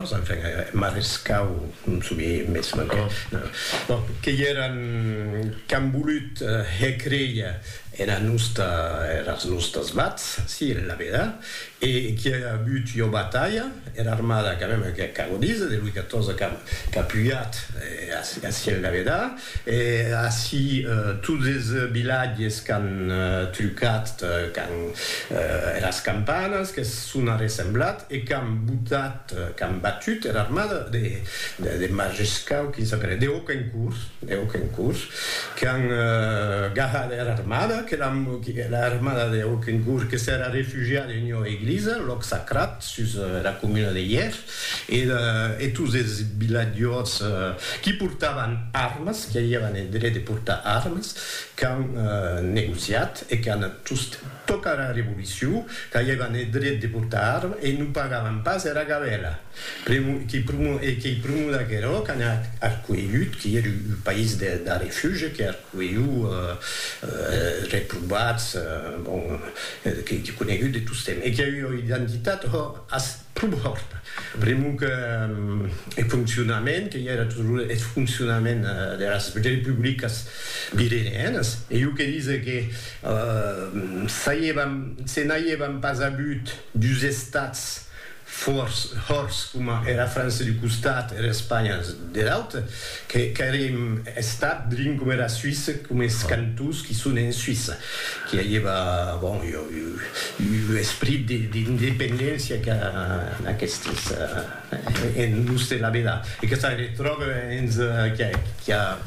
Enfin, Marescau non soubie mès mancòp. Bon, que èran qu'an volut hècréia ena nosta, eras nostas vats, si, la veda, e qu'i a agut ua batalha, era armada, quand mème, qu'ac a godís, de Louis XIV qu'a pujat, e, si, la veda, E ací tots es vilatges qu'an trucat quand eras campanas que son arressemblat e qu'an botat, qu'an batut era armada de Majescau, quin s'apelèt? De Hocquencourt, de Hocquencourt, qu'an gahat era armada, que l'an, era armada de Hocquencourt que s'era refugiada en ua eglisa, lòc sacrat, sus era comuna de Hièr. Era e tous es vilatjors qui portavan armes, qui aviavan eth dret de portar armes, qu'an negociat e qu'an tost tòca era revolucion, qu'aviavan eth dret de portar armes e non pagavan pas era gabèla. Pr'amor e qu'ei pr'amor d'aquerò qu'an arcuelhut, qui ère un país de refuge, qui arcuelhut es reprovats, bon, qu'ei conegut de tostemps e qui ei ua identitat, hò, Prumhòrt, pr'amor que eth foncionament, que i era toujours eth foncionament deras republicas virenianas, e jo que dise que se n'aiévan pas avut dus estats fòrts coma era França d'un costat e era Espanha der aute, Qu'èrem estat drin coma era Suisse, coma es cantons qui son en Suisse, qui aieva, bon, ua esprit d'independéncia que aquestes en los de la vela, e que se retròbe hens qui a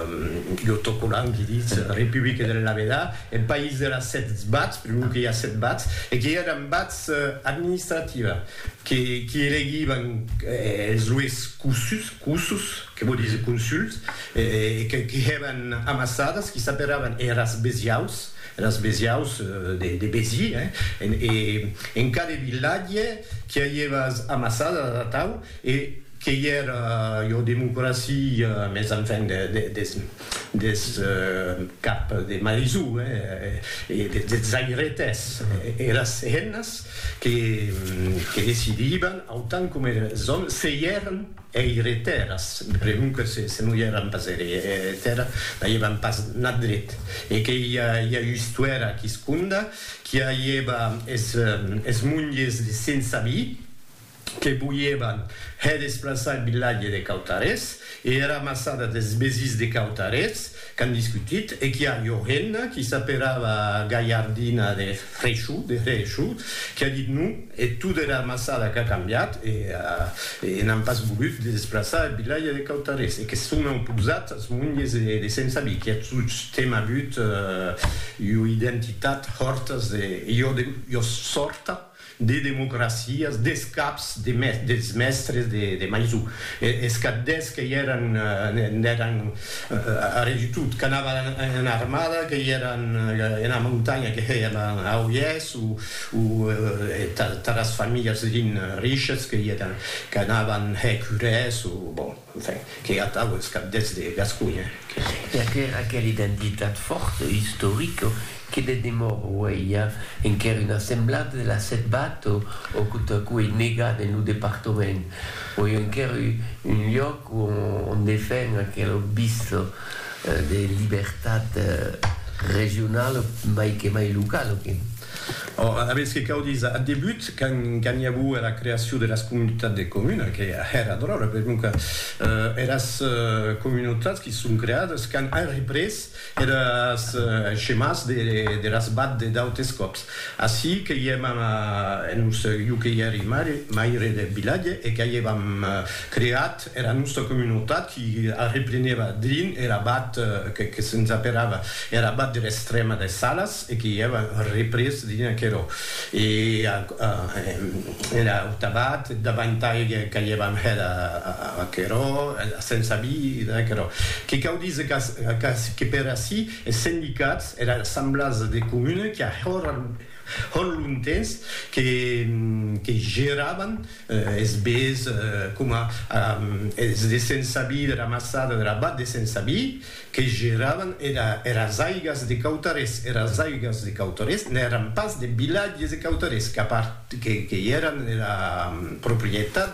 ua autocolant qui ditz Republique de la vela, eth país de las sèt bats, pr'amor que i a sèt bats, e qui èran bats administrativa. que qui elegivan es lues cossus, que vò díser consuls, e que qui hèban amassadas, qui s'aperavan eras besiaus, eras besiaus de Besi, e en cada vilatge qui avieva es amassadas atau, e qu'ei era, jo, democracia, mes enfin, des. des cap de Marizù e des zairetes, eras hennas que decidivan, autant coma eres òmes, se i èran eireteras, pregunque se non i èran pas eireteras, n'aievan pas nat dret, e que i a ua istuèra quisconda qui aieva es monges de sense vi, que voièvan hè desplaçar eth vilatge de Cautarés e era massada des Besís de Cautarés qu'an discutit e qu'i a ua hemna qui s'aperava Galhardina de Freixou, de Hreishou, qui a dit non e tot era massada qu'a cambiat e n'an pas volut de desplaçar eth vilatge de Cautarés e que se son oposats as monges de Sent Sabí qui a tostemp avut ua identitat hòrtas de iòs sòrta. de democracias, des caps de mes, dels mèstres de, de Maisou, e, es qu'ath des qu'ei eran, en eran, arrè de tot, qu'anava ena armada, qu'ei eran ena montanha, que hèiem a Oiès, o, o tath, tath as familhas, lin, riches, qu'ei eran, qu'anavan hèr curès, o, bon. Enfin, qu'ei atau es cabdets de Gasconha, que se. Per que era aquela identitat fòrta, istorica, que de demor aueia enquer una semblada de la Setbat o quota a quo ei negat en lo departament, auie enquer un lloc ont defen aquela vista de libertat regionala, mai que mai locala, que. Or, alavetz que cau díser, ath debut, quand i aguo era creacion deras comunitats de comuna, que hèra dròlla, per non que eras comunautats qui son creades quand an représ eres schemas deras bad de d'autes còps. Ací que i èm en Urselh, jo que i èri maire deth vilatge e qu'a i èvam creat era nòsta comunautat qui arreplenèva drin er abat que se'n zaperava er abat der Estrèma des Salas e que i èva représ drin aquerò e era auta abat davantai que i èva hèt aquerò se'n sabí d'aquerò que cau díser qu'ací que per ací es sendicats era assemblàs de comuna qui a hèr Hòn lontens que que geravan es bés coma es de Sensabi de la maçada de la Bat de Sensabi que geravan era eras aigas de Cautarés, eras aigas de Cautarés n'èran pas de vilatges de Cautarés, qu'a part que que i èran era proprietat